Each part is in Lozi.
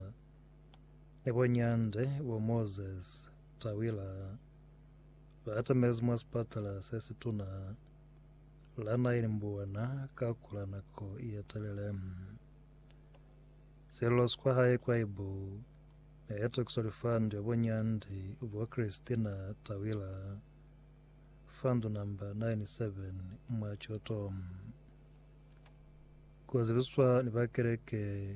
Musa, ni bo Nyande bo Moses Tawila ba atamezi mwa sipatala se situna la Nile Mbuana ka kula nako ye telele. Sello sikwa hae kwa ibu ne eto kiso lifandi ya bo Nyande bo Christina Tawila, fandu namba 97 mwa Choto. Ku zibiswa ni ba keleke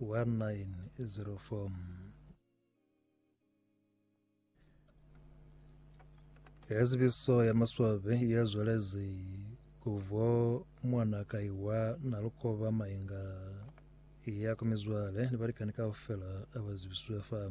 1904 Ka zibiso ya maswabi ya zwalezi ku vo mwana kai wa Nalukoba Mainga ya ku mizwale ni balikani kaufela aba zibiswe fa.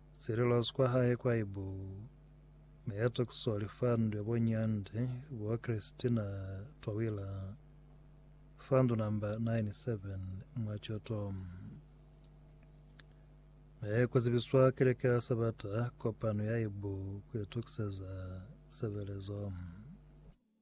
Sililozo kwa hae kwa ibu ne ya tokiswa lifandwe bo Nyandi bwa Christina Twawila, fandu namba 97 mwa Choto. Ne ku zibiswa keleke ya Sabata kopano ya ibu ku itokiseza sebelezo.